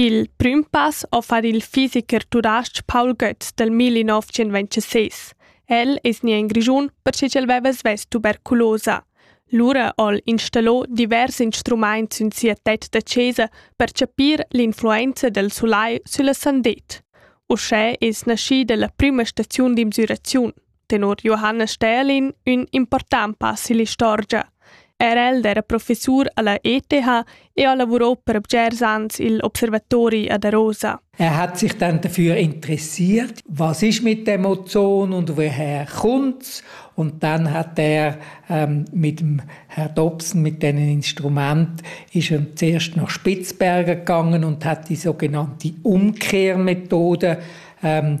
Il prüm pass ho far il fisicher tudais-ch Paul Götz dal 1926. El es gnà in Grischun perche ch'el veva svess tuberculosa. Lura ho'l installò divers instrumaints sün sia tet da chesa per chapir l'influenza del sulai sülla sandet. Uschè es naschida la prüma staziun d'insüraziun. tenor Johannes Stählin ün important pass ill'istorgia. Er el era professur alla ETH e ha lavurò per bgers ans il Observatori ad Arosa. Er hat sich dann dafür interessiert, was ist mit dem Ozon und woher kommt's. Und dann hat er ähm, mit dem Herr Dobson, mit diesem Instrument, ist er zuerst nach Spitzbergen gegangen und hat die sogenannte Umkehrmethode ähm,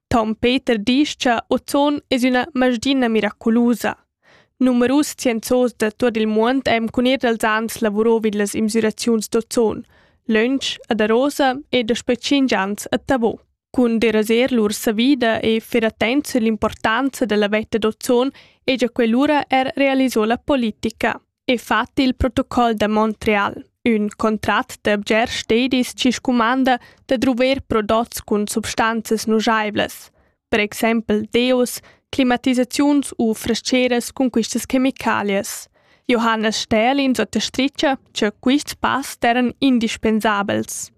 Tom Peter disch cha Ozon es üna masdina miraculusa. Numerus scienzos da tuot il muond ean cun ir dals ans lavurò vid las imsüraziuns d'ozon, lönch ad Arosa e daspö tschinch ans a Tavò. Cun deraser lur savida e fer attent sull'importanza da la vetta d'ozon e già quell'ura er realisò la politica. e fat il protocol da Montreal, ün contrat da bgers stedis chi scumanda da druver prodots cun substanzas nujaivlas, per exaimpel deos, climatisaziuns u frascheras cun quistas chemicalias. Johannes Stählin suttostricha cha quists pass d'eiran indispensabels.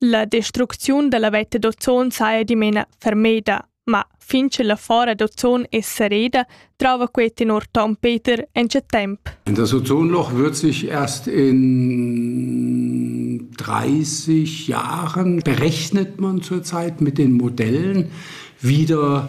La destrucziun dalla veta d'ozon saja dimena fermeda, ma fin che la fora d'ozon è sereda, trova quei tenor Tom Peter ence temp. Das Ozonloch wird sich erst in 30 Jahren, berechnet man zurzeit mit den Modellen, wieder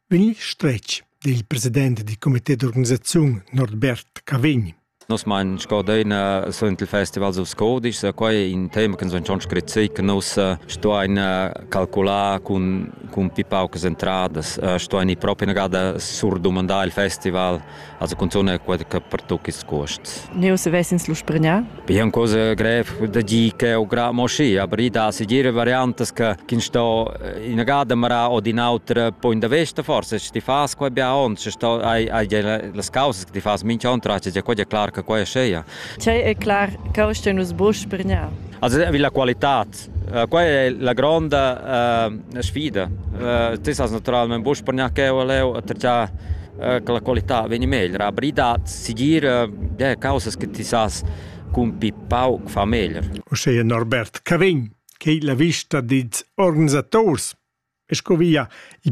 Vegl stretg dil president dil comité d'organisaziun Norbert Cavegn. Nos mein scodeina sun il festival of Scodisch, so quai è in tema che sun schon scritto che nus stuain calcular con con più paucas entradas, stuain proprio una gada surdomandare il festival Also cunzun quella che pertoc ils cuosts. Neu se vesins lu spregnà? Be è cosa grev da dir che o gra mo schi, aber i da segire variantes che kin sto in gada mara o din autra poi da vesta forse sti fas qua bia on, se sto hai hai las causas che ti fas mincha on trace, è quella clar che qua è sceia. Cei è clar che o sto nus bo spregnà. Also vi la qualità Quai è la gronda uh, sfida. Uh, tu sas naturalment buc per neanche leu attraccar uh, che la qualità vegni meglio. Aber da seguir uh, causas che ti sas cun pi pauc fa meglio. Uscheia Norbert Cavin, che la vista dils organisators e sco via il